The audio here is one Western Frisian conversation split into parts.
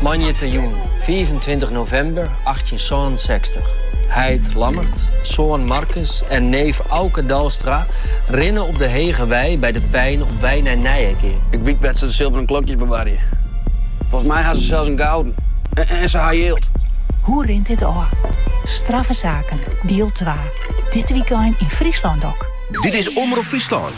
Moandeitejûn 25 novimber 1867. Heit Lammert, soan Markus en neef Auke Dalstra rinne op de Hege Wei by de Pein op wei nei Nyegea. Ik wyt wêr't se de silveren klokjes bewarje. Folgens mij ha se sels in gouden. En se ha jild. Hoe rint dit ôf? Straffe saken, diel twa. Dit wykein yn Fryslân Dok. Dit is Omrop Fryslân.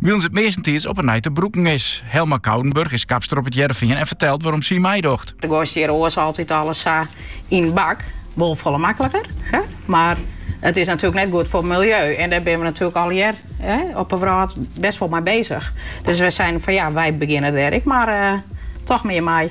Wylens it meastentiids op 'e nij te brûken is. Helma Koudenburg is kapster op It Hearrenfean en fertelt wêrom sy meidocht. Do goaist hjir oars altyd alles sa yn bak. Wol folle makliker, mar it is natuerlik net goed foar it miljeu. En dêr binne we natuerlik allegear op 'e wrâld best wol mei bezich. Dus we seinen fan ja, wy begjinne dêr ek mar toch mear mei.